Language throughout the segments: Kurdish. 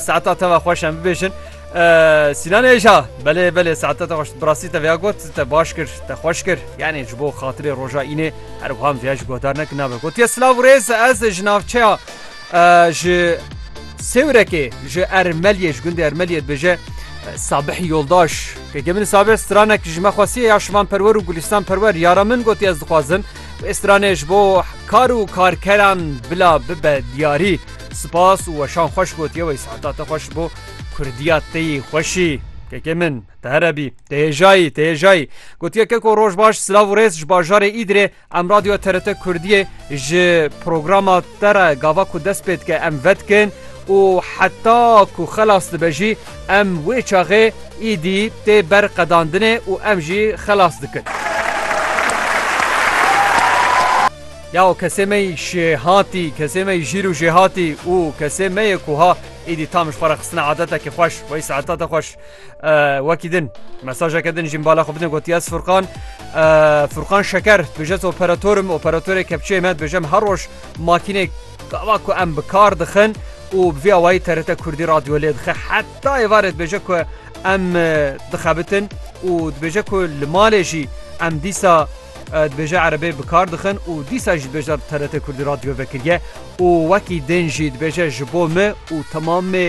Saeta te ve xweş em bibêjin. Sînan êja belê belê saeta te xweş birastî te veya got te baş kir te xweş kir yanê ji bo xatirê roja înê her wam veya ji guhdar nekin nabe gotiye silav rêz ez ji navçeya ji sêwrekê ji ermeliyê ji gundê ermeliyê dibêje Sabih yoldaş ke gemin sabir stranek ji me xwasiye ya şivan perwer û gulistan perwer yara min gotiye ez dixwazin Wê stranê ji bo kar û karkeran bila bibe diyarî. Spas û weşan xweş gotiye wey saeta te xweş bo Kurdiya te yî xweşî. Kekê min te here bî te hêjayî te hêjayî gotiye keko roj baş silav û rêz ji bajarê Îdirê em radyoya TRT Kurdiyê ji programa te re gava ku dest pê dike em vedikin û heta ku xelas dibe jî Em wê çaxê îdî tê ber qedandinê û em jî xelas dikin. Yaw kesê me yî şêhatî, kesê me yî jîr û jêhatî û kesê me yê ku ha îdî tam ji xwe re xistina adetekî xweş wey saetata xweş wekî din mesajeke din jî bala xwe bidin gotiye ez Furkan Furkan Şeker dibêje ez operatorim operatorê kepçeyê me dibêjem her roj makînê Gava ku em bi kar dixin û bi vî awayî TRT Kurdî radyo lê dixe heta êvarê dibêje ku em dixebitin û dibêje ku li malê jî em dîsa dibêje erebê bi kar dixin û dîsa jî dibêje TRT Kurdî radyo vekiriye û wekî din jî dibêje ji bo min û temamê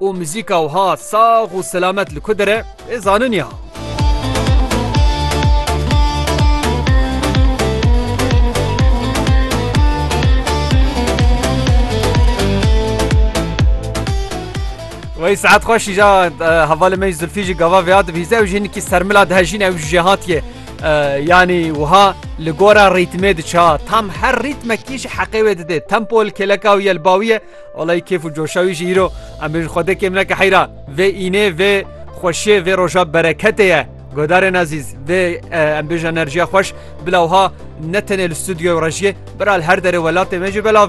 Û muzîka wiha sax û selamet li ku dir e, wê zanin ya. Wey saet xweş îja hevalê me Zilfî jî gava vêya dibîze ew jî hinkî sermila dihejîn ew jî hatiye yanî wiha li gora rîtmê diça tam her rîtmekî ji heqê wê didê tempo li kêleka wî ye li bawî ye Olay kêf û coşa wî jî îro em bêjin xwedê kêm neke heyra vê înê vê xweşiyê vê roja bereketê ye. Godarên ezîz vê em bêjin enerjiya xweş bila wiha ne tenê li stûdyoya rejiyê bira li her derê welatê me jî belav